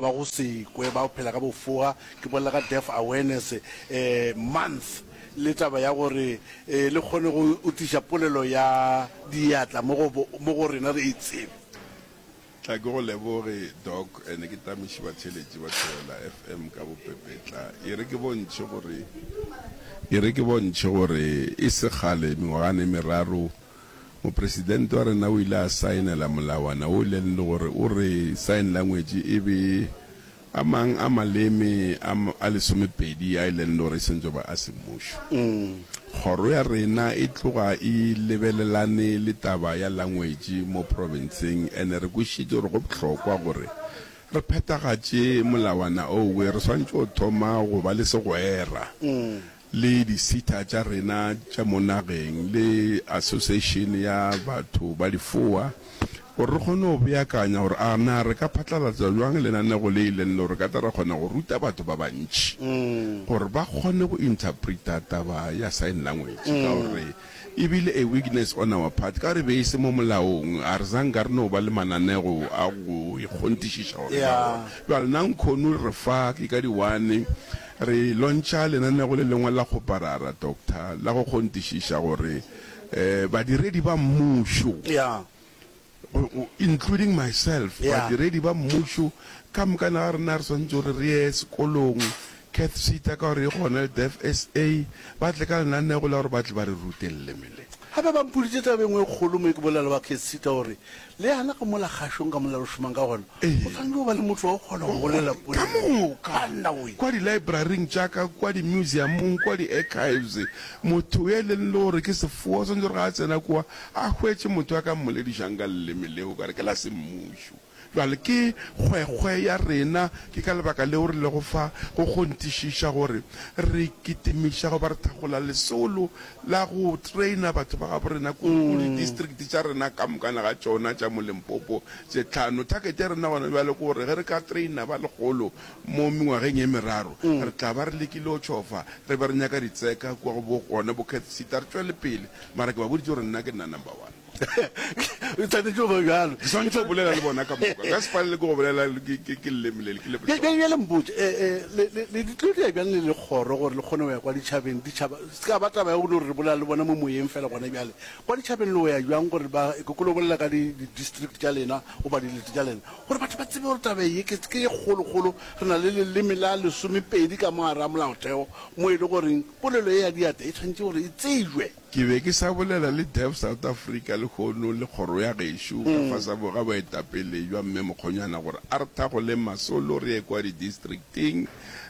ba go se kwe ba phela ka bofoga, ke bolela ka Deaf Awareness Month le taba ya gore le kgone go tliša polelo ya diatla mo go rena re e tsebe. Tla ke go leboge Doc and ke tameši batheletši ba Thobela FM ka bopepetla. E re ke bontšhe gore e re ke bontšhe gore e se kgale mengwagana e meraro, Mopresidente wa rena o ile a saenela molawana wo le le gore o re sign language e be a mang a maleme a a lesomepedi a e leng le gore e sentšwe ba a semmušo. Kgoro ya rena e tloga e lebelelane le taba ya language mo provinceng and re kwešitše gore go bohlokwa gore re phethagatše molawana owe re swantše go thoma go ba le segwera le disita tša rena tša mo nageng le Asoseishene ya Batho ba Difoa gore re kgone go beakanya gore a na re ka phatlalatsa bjang lenaneo le e leng le gore ka tla re kgona go ruta batho ba bantši gore ba kgone go interpreter taba ya sign language ka gore e bile a weakness on our part ka gore e be e se mo molaong a re zanka re no ba le mananego a go ikgontišiša gore ba gona bjale na nkhono re fa ke ka di-one Re lontšha lenaneo le lengwe la go parara, doctor, la go kgontišiša gore badiredi ba Mmušo, including myself, badiredi ba Mmušo ka moka ga rena re swanetše gore re ye sekolong, Cath Seater ka gore e gona le Deaf SA, ba tle ka lenaneo la gore ba tle ba re rute leleme le. Gape ba mpoditše taba e nngwe e kgolo mo ke bolela le ba Cath Seater gore Le yana ka mola kgašong ka mola re šomang ka gona, o swanetše go ba le motho wa go kgona go bolela polelo ka nawe. Kua di-library-ing tša ka, kua di-museum-ong, kua di-archives, motho yo e leng le gore ke sefoa o swanetše gore ga a tsena kua a hwetše motho a ka mmoledišang ka leleme leo, ka re ke la semmušo. Bjale ke kgwekgwe ya rena, ke ka lebaka leo re lego fa go kgonthišiša gore re kitimiša goba re thakgola lesolo la go traina batho ba gabo rena kudu go di-district tša rena ka mokana ga tšona tša mo Limpopo tše tlhano. Target ya rena gona bjale ke gore ge re ka traina ba lekgolo mo mengwageng e meraro, re tla ba re lekile go tšhofa re be re nyaka ditseka kua go bo gona bo Cath Seat, a re tšwele pele. Mara ke ba boditše gore nna ke nna number one. e tshwanetse go ba bjalo ke swanetse go bolela le bona ka moka ka sefane le ke go bolela ke leleme ke lebjale mpotse le ditlodia bjang le le kgoro gore le kgone go ya kwa ditšhabeng ditšhaba se ka ba taba ya gore re bolela le bona mo moyeng fela gona bjale kwa ditšhabeng le o ya bjang gore ba e kokolo bolela ka di-district tša lena go ba dilete tša lena gore batho ba tsebe gore taba ye ke ye kgolokgolo re na le leleme la lesomepedi ka mogare a molaotheo mo e le goreng polelo e ya diata e tshwanetse gore e tsejwe Ke be ke sa bolela le Deaf South Africa lehono le kgoro ya gešo ka fasa ga boetapele bja Mme Mokgonyana gore a re thakgoleng masolo re ye kwa didistricting.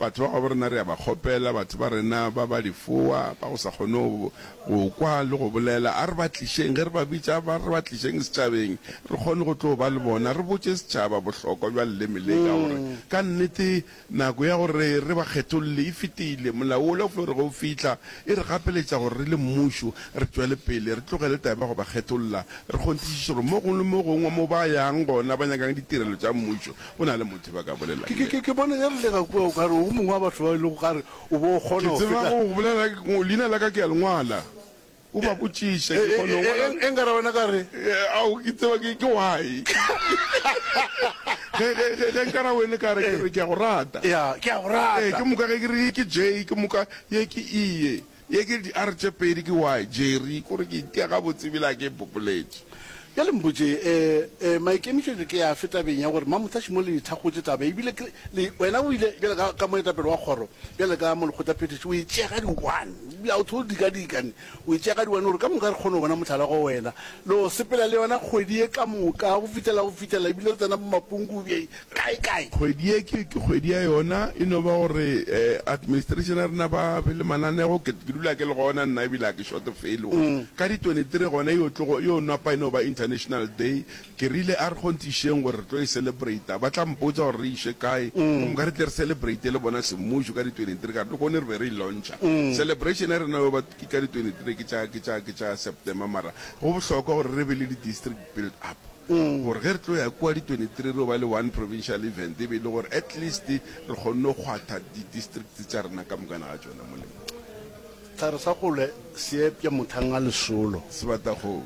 Batho ba gabo rena re a ba kgopela, batho ba rena ba ba difowa, ba go sa kgone go kwa le go bolela, a re ba tlišeng ge re ba bitša, ba re ba tlišeng setšhabeng re kgone go tlo ba le bona, re botše setšhaba bohlokwa bja leleme le ka gore ka nnete Nako ya gore re ba kgetholle e fetile. Molao wola o flo re ge o fihla, e re gapeletša gore re le mmušo re tšwele pele, re tlogele taba ya go ba kgetholla, re kgonthišiše gore mo gongwe le mo gongwe mo ba yang gona ba nyakang ditirelo tša mmušo, go na le motho yo ba ka bolelang le yena. Ke bona e rile ka kua o ka re o mongwe wa batho bao e lego gare o be o kgona Ke go tseba feta. go bolela, leina la ka ke a le ngwala. O ba botšiše, ke kgone go bona. E, e, e, e nka ra wena ka re. Ao, ke tseba ke, ke why. Ge, ge, ge, ge nka ra wene ka re, ke re, ke a go rata. Ya, ke a go rata. Ee, ke moka ge ke re ye ke J, ke moka ye ke E ye. Ye ke di-R tše pedi ke Y, Jerry, kore ke itia gabotse ebile a ke e bopoletše. Bjale mpotše, e, e, maikemišetšo ke afe tabeng ya gore Mamotse a šimolole dithakgotše taba? Ebile ke, le, wena o ile, bjale ka, ka moetapele wa kgoro, bjale ka molekgotlaphethiši, o e tšea ka di-one, a o thole dika-dika, ne, o e tšea ka di-one, o re, Ka moka re kgone go bona mohlala go wena. Le o sepela le yona kgwedi ye ka moka, go fihlela, go fihlela, ebile re tsena bomapunku bje, Kae kae? Kgwedi ye ke kgwedi ya yona, e no ba gore administration ya rena ba be le mananego, ke dula ke le gona nna ebile ga ke short felo. Ka di twenty three gona e yo tlogo, e yo napa e no ba international day, ke rile a re kgong te išeng gore re tlo e celebrate-a, ba tla mpotsa gore re iše kae, gomme ka re tle re celebrate-e le bona semmušo ka di twenty three, ka re le gone re be re e launch-a. Celebration ya rena yo ba ke ka di twenty three ke tša, ke tša, ke tša September mara go bohlokwa gore re be le di district. Build up gore ge re tlo ya kua di 23 re yo ba le one provincial event e be e le gore at least re kgonne go kgwatha di districts tša rena ka mokana ga tšona molemo. Sehlare sa kgole se epša mothang a lesolo. Sebatakgomo.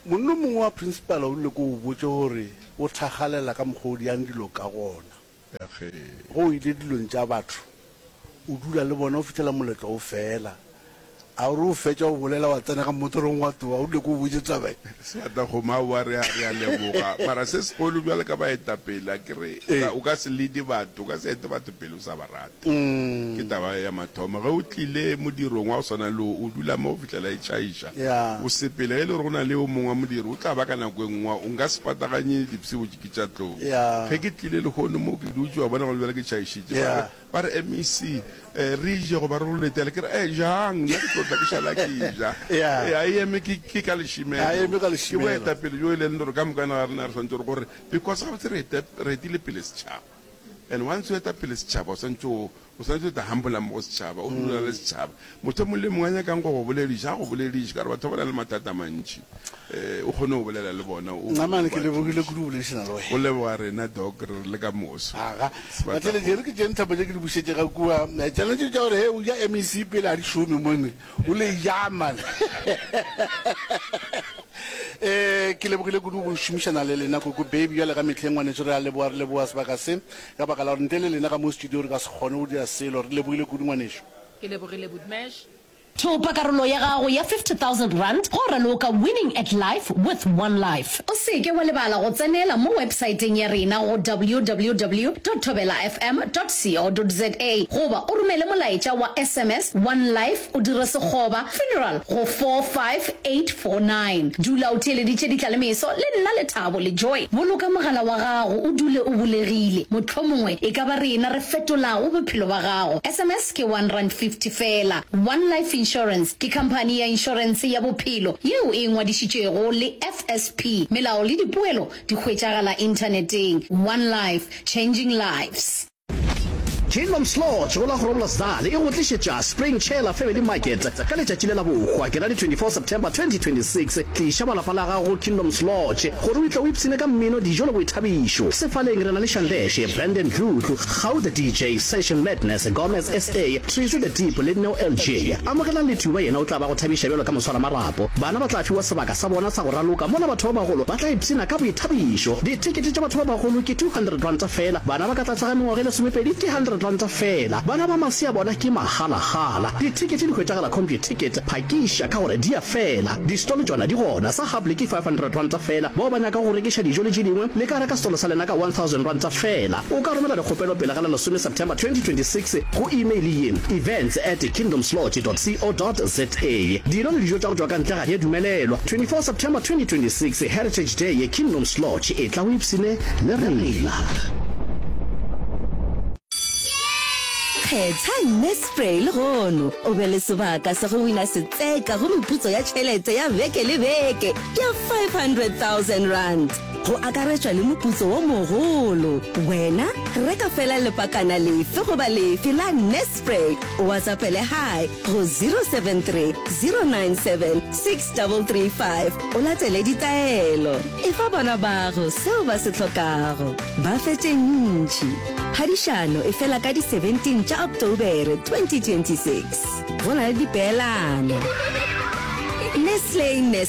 Monna o mongwe wa Principal o rile ke o botše gore o thakgalela ka mokgwa o diang dilo ka gona. ya ge. Ge o ile dilong tša batho, o dula le bona go fihlela moletlo o fela. A o re o fetša go bolela wa tsena ka mmotorong wa tloga, o nyake o botše taba ye? Seatla gomme a boa, re a, re a leboga. Mara se segolo bjalo ka baetapele, a ke re, o ka, o ka se lead-e batho, o ka se ete batho pele o sa ba rata. Ke taba ya mathomo. Ge o tlile modirong wa go swana le wo, o dula mo go fihlela e tšhaiša. O sepele. Ge e le gore go na le yo mongwe wa modiro, o tla ba ka nako e nngwe. O nka se pataganye dipsebo tše ke tša tlou. Ge ke tlile lehono mo, ke dutše, wa bona, gona bjale ke tšhaišitše. Ba re, ba re, MEC, re je goba re go letele? Ke re, Ee, jang, nna ke tlo tla ke šala ke ja. A e eme ke, ke ka lešemelo. Ke boetapele bjo e leng gore ka moka ga rena re swanetše gore, gore, because gabotse re etile pele setšhaba. And once o eta pele setšhaba, o santse o o santse o ta humble mo go setšhaba, o dula le setšhaba. Motho mong le mong a nyakang go go bolediša, a go bolediše, ka gore batho ba na le mathata a mantši. Eh, o kgone go bolela le bona, o Namane, ke lebogile kudu go boledišana le wena. O leboga rena Doc, re re le ka moso. Aga, Sebata Batleledi, e re ke tše nthapo tše ke di bušetše ga kua, eh, tšona tše tša gore, he, o ja MEC pele a di šome mone. O le jang man? Eh, ke lebogile kudu go šomišana le lena koko baby bjale ga metlheng ngwanetso re a leboa re leboa sebaka se ka baka la gore ntle le lena ka mo studio re ka se kgone go dira selo re lebogile kudu ngwanešo Ke lebogile Budmash. Thopa karolo ya gago ya R50,000 go raloka Winning at Life with One Life. O se ke wa lebala go tsenela mo websaeteng ya rena go www.thobelafm.co.za goba o romele molaetša wa sms wa NLife o dire sekgoba, funeral, go 45849. Dula o theeleditše ditla le meso le nna Lethabo le Joy. Boloka mogala wa gago o dule o bulegile, mohlomongwe e ka ba rena re fetolago bophelo ba gago. Sms ke one rand fifty fela. One Life Insurance ke khamphani ya inšorense ya bophelo yeo e ngwadišitšwego le FSP. Melao le dipoelo di hwetšagala inthaneteng. One Life, changing lives. Kingdoms Lodge go la Groblersdal e go tlišetša Spring Chela Family Market ka letšatši le la bohwa, ke la di 24 September 2026. Tliša ba lapa la gago go Kingdoms Lodge gore o itle o ipshine ka mmino, dijo le boithabišo. Sefaleng re na le Shandeshe, Brandon Dludlu, Kgau the DJ, Session Madness, Gomez SA, Treezy the Deep le Neo LJ. Amogelang Lethuba yena o tla ba go thabiša bjalo ka moswaramarapo. Bana ba tla fiwa sebaka sa bona sa go raloka mola batho ba bagolo ba tla ipshina ka boithabišo. Dithekete tša batho ba bagolo ke R200 feela, bana ba ka tlase ga mengwaga e lesomepedi ke R100 feela. Bana ba masea bona ke magalagala. Dithekete di hwetšagala Computicket, phakiša ka gore di a fela. Distolo tšona di gona, sa Hable ke R500 feela, bao ba nyakago go rekiša dijo le tše dingwe le ka reka stolo sa lena ka R1000 feela. O ka romela dikgopelo pele ga la lesome September 2026 go imeile ye, events at kingdomslodge dot co dot za. Dino le dijo tša go tšwa ka ntle ga di a dumelelwa. 24 September 2026 Heritage Day ye Kingdoms Lodge, etla o ipshine le rena. Kgetha Nespray lehono o be le sebaka sa go wina setseka go meputso ya tšhelete ya beke le beke ya R500 000. go akaretšwa le moputso wo mogolo. Wena reka fela lepakana lefe goba lefe la Nespray, o WhatsAppele Hi go 073 097 6335 o latele ditaelo. Efa bana bago seo ba se hlokago, ba fe tše ntši. Phadišano e fela ka di 17 tša Ocktobere 2026. Go na le dipeelano. Nestle Nespray.